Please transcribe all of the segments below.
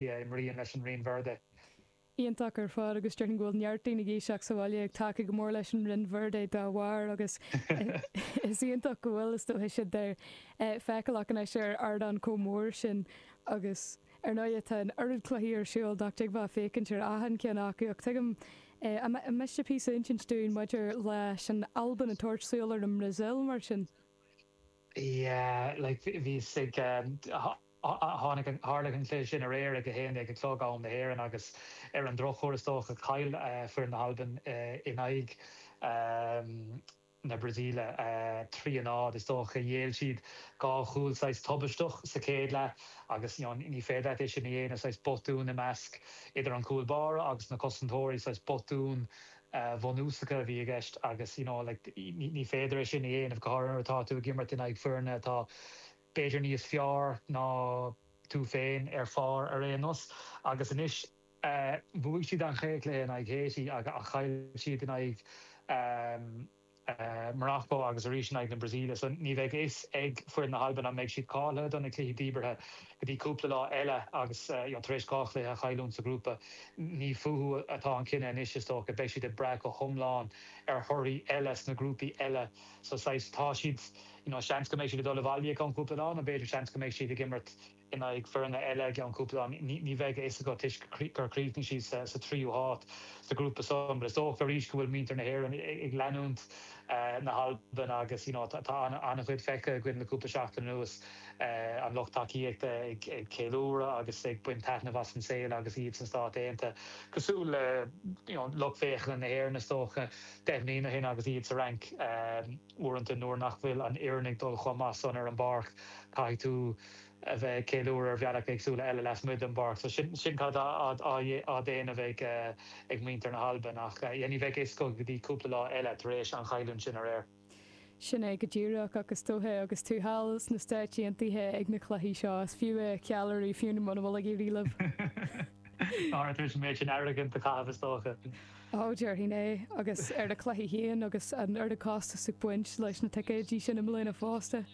Imríonn leis an Rinn Verde. Iontach ar fad agus déarfainn go bhfuil neart daoine Laoiseach sa bhaile ag tacú go mór leis an Rinn Verde dá bharr agus is iontach go bhfuil, is dócha, iad a fheiceáil acu anois ar ardán chomh mór sin agus, ar ndóighe, tá an oiread cluichí ar siúl nach dtig bheith ag féachaint ar achan cheann acu ach tuigim, an miste píosa a insint dúinn maidir leis an Albain ag tabhairt súil ar an mBrasaíl mar sin? Yeah, like, bhíos ag. Tharla an cluiche sin aréir ag a haon déag a chlog, am na hÉireann, agus ar an drochuair, is dócha, chaill foireann na hAlban in aghaidh na Brasaíle, trí a náid. Is dócha gur ghéill siad dhá chúl saghas tubaisteach sa chéad leath agus ní féidir leat é sin a dhéanamh, saghas botún i measc, idir an cúl báire agus na cosantóirí, saghas botún bhunúsacha a bhí i gceist agus you know like ní féidir é sin a dhéanamh go háirithe nuair atá tú ag imirt in aghaidh foirne atá b'fhéidir níos fearr ná tú féin ar pháipéar ar aon nós. Agus anois, bhuaigh siad an chéad chluiche in aghaidh Haiti ach chaill siad in aghaidh Mharacó agus arís in aghaidh na Brasaíle so ní bheidh a fhios ag foireann na hAlban an mbeidh siad cáilthe do na cluichí díbeartha go dtí cúpla lá eile agus tar éis dhá chluiche a chailliúint sa ghrúpa. Ní fúthu atá an cinneadh anois, is dócha. Beidh siad ag brath go hiomlán ar thorthaí eile sna grúpaí eile. So saghas, tá siad, you know, seans go mbeidh siad ag dul abhaile i gceann cúpla lá, nó b'fhéidir, seans go mbeidh siad ag imirt in aghaidh foirne eile i gceann cúpla lá. Ní, ní bheidh a fhios agat toisc gur chríochnaigh siad sa, sa tríú háit sa ghrúpa san. But is dócha arís go bhfuil muintir na hÉireann ag leanúint na hAlban agus, you know, tá, tá an-chuid feicthe againn le cúpla seachtain anuas, an lucht tacaíochta ag, ag ceiliúradh agus ag baint taitneamh as an saol agus iad sna Stáit Aontaithe, cosúil le, you know, lucht féachana na hÉireann is dócha. Deich mbliana ó shin agus iad sa Fhrainc, uaireanta nuair nach bhfuil an fhoireann ag dul chomh maith san ar an bpáirc, caithfidh tú a bheith ag ceiliúradh ar bhealaí éagsúla eile lasmuigh den bpáirc. So sin sin cad atá á dhéanamh ag ag muintir na hAlban ach yeah ní bheidh a fhios acu go dtí cúpla lá eile tar éis an chailliúint sin aréir. Sin é go díreach, ach is dóiche, agus tú thall sna Stáit Aontaithe ag na cluichí seo, is fiú é a cheiliúradh, fiú muna bhfuil ag éirí libh. Táthar tar éis an méid sin airgid a chaitheamh is dócha. Ó, déarfainn é, agus ar na cluichí féin, agus an oiread costas ag baint leis na ticéidí sin i mbliana fosta.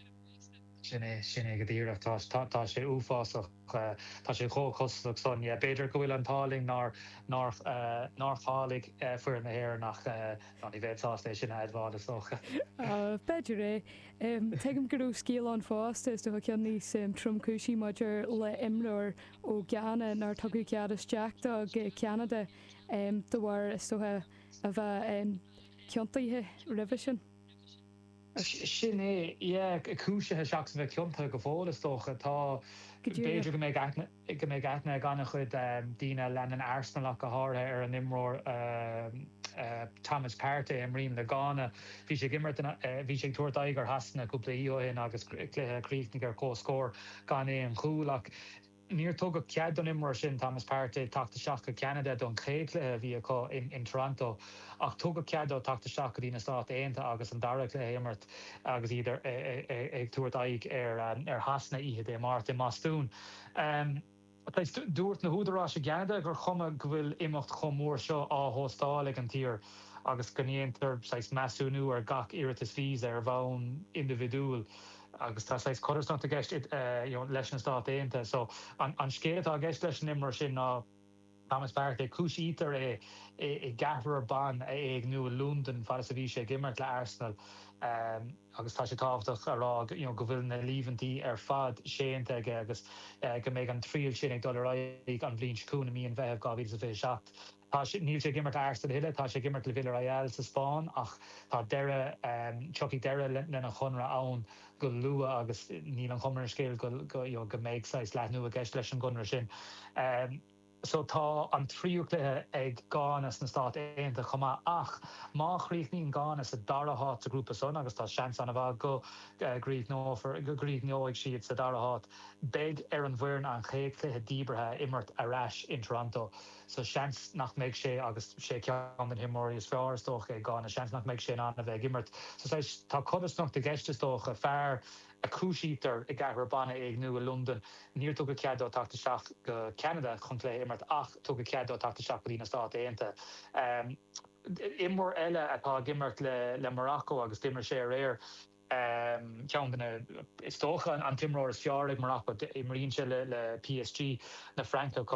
Sin é, sin é go díreach. Tá, tá sé uafásach, tá sé chomh costasach san. Yeah, b'fhéidir go bhfuil an t-ádh linn nár, nár, nár cháiligh foireann na hÉireann ach, no, ní bheinn sásta é sin a admháil is dócha. Ah, b'fhéidir é. Tuigim go raibh scéal ann fosta, is dócha ceann níos tromchúisí maidir le imreoir ó Ghana nár tugadh cead isteach dó go Ceanada de bharr, is dócha, a bheith ciontaithe roimhe sin. Sin é, yeah. Cúisithe seachas a bheith ciontaithe go fóill, is dócha. Tá, Go b'fhéidir go díreach. mbeidh aithne, go mbeidh aithne ag an-chuid daoine a leanann Arsenal ach go háirithe ar an imreoir Thomas Partey a imríonn le Gána. Bhí sé ag imirt in, bhí sé ag tabhairt aghaidh ar Shasana cúpla oíche ó shin agus cluiche a chríochnaigh ar comhscór gan aon chúl ach, Níor tugadh cead don imreoir sin, Thomas Partey, teacht isteach go Ceanada don chéad chluiche a bhí acu in Toronto ach tugadh cead dó teacht isteach go dtí na Stáit Aontaithe agus an dara cluiche a imirt agus iad ag tabhairt aghaidh ar Shasana oíche Dé Máirt i mBostún. Dúirt na húdaráis i gCeanada gur chuma go bhfuil imeacht chomh mór seo á hóstáil ag an tír agus go ndéantar saghas measúnú ar gach iarratas víosa ar bhonn indibhidiúil. agus tá saghas codarsnacht i gceist leis na Stáit Aontaithe. So an scéal atá i gceist leis an imreoir sin ná Thomas Partey. Cúisítear é i gceathrar ban a éigniú i Londain fad is a bhí sé ag imirt le Arsenal agus tá sé tábhachtach a rá go bhfuil na líomhaintí ar fad séanta aige agus go mbeidh an triail sin ag dul ar aghaidh an bhliain seo chugainn, i mí an Mheithimh 2027. Tá, níl sé ag imirt le Arsenal a thuilleadh, tá sé ag imirt le Villarreal sa Spáinn ach tá deireadh, tiocfaidh deireadh lena chonradh ann go luath agus níl an chuma ar an scéal go, you know, go mbeidh saghas leathnú i gceist leis an gconradh sin. So tá an tríú cluiche ag Gána sna Stáit Aontaithe chomh maith ach má chríochnaíonn Gána sa dara háit sa ghrúpa san, agus tá seans an-mhaith go gcríochnófar, go gcríochneoidh siad sa dara háit, beidh ar an bhfoireann an chéad chluiche díbeartha a imirt ar ais in Toronto. So, seans nach mbeidh sé, agus is é ceann de na himreoirí is fearr, is dócha, ag Gána, seans nach mbeidh sé in ann a bheith ag imirt sa saghas. Tá codarsnacht i gceist, is dócha, fear a chúisítear i gceathrar ban a éigniú i Londain, níor tugadh cead dó teacht isteach go Ceanada chun cluiche a imirt ach tugadh cead dó teacht isteach go dtí na Stáit Aontaithe. Imreoir eile atá ag imirt le Morocco agus d'imir sé aréir, ceann de na, is dócha, an t-imreoir is fearr ag Morocco, imríonn sé le PSG na Fraince chomh maith.